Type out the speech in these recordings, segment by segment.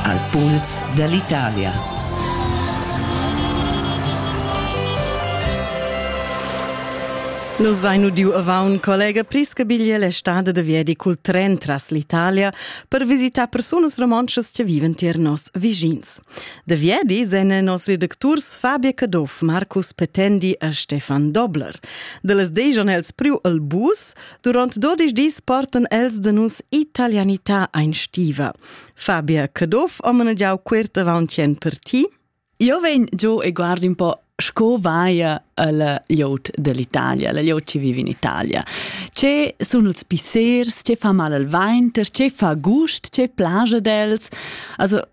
Al puls dall'Italia. Nus vein udiu avaun collega Priscabiglia la stada de viedi cul tren tras l'Italia per visitar persunas romontschas che viven tier nos vischins. De viedi sen nos redacturs Fabia Caduff, Marcus Petendi e Stefan Dobler. De les dejan els priu el bus, Durant dodisch dis portan els de nus italianità ein stiva. Fabia Caduff ho manegiau quert avauntien per ti. Io vegn giù e guardo un po' sco vaia al liot dell'Italia, al liot che vive in Italia. Ce sono els pissers, ce fa mal al vainter, ce fa gust, ce plaja d'els. Also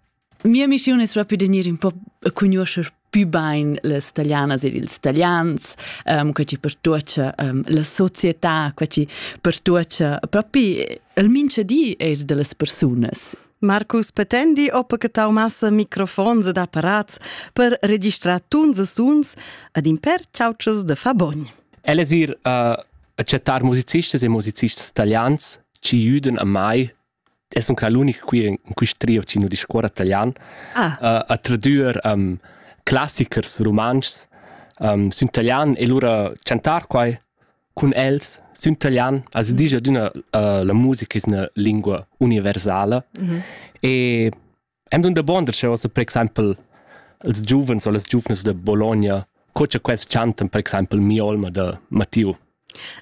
Mia missiun es propi da gnir ün po a cugnuoscher pü bain las talianas ed ils talians, um, quai chi pertuocha um, la società, quai chi pertuocha propi il minchadi eir da las persunas. Marcus Petendi oppa che tau massa microfons ed apparats per registrar tuns e suns ad in per ciaucias de Fabogn. El es ir uh, a chattar musicistas e musicistas talians ci jüden a mai E sun qua l'unic qui in quist trio chi nu discuorra talian. Ah. Uh, a tradüer um, classichers rumantschs um, sün talian e lura chantar quai cun els sün talian as disch adüna uh, la musica es üna lingua universala mm -hmm. e Am dun dabonda ch'eu as per exaimpel als giuvens o las giuvnas da Bologna, co cha quels chantan per exaimpel Mia olma da Mattiu.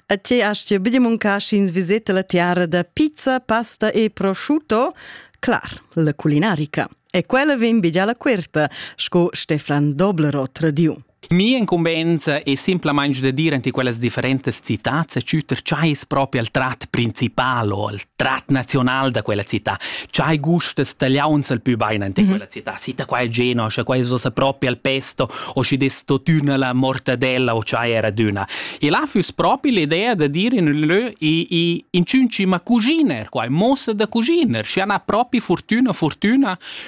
A te as ti be muncar sch'ins viseta la tiara da pizza, pasta e prosciutto? Clar, la culinarica. E quella vegn be già la querta, sco Stefan Doblerot tradiu. Mi incumbensa è simplamain da dir ante quellas differentas citats e tschütter chai es propi al trat principal o al trat nazional da quella città. Chai gustas tagliauns al pü bain ante mm -hmm. quella città. Sita qua è Genoa, scha quai es propi al pesto o schi des totüna la mortadella o chai era d'üna. E là füss propi l'idea da dire in ün lö i, i in cima cuginer, quai mossa da cuginer, schi ana propi fortüna, fortüna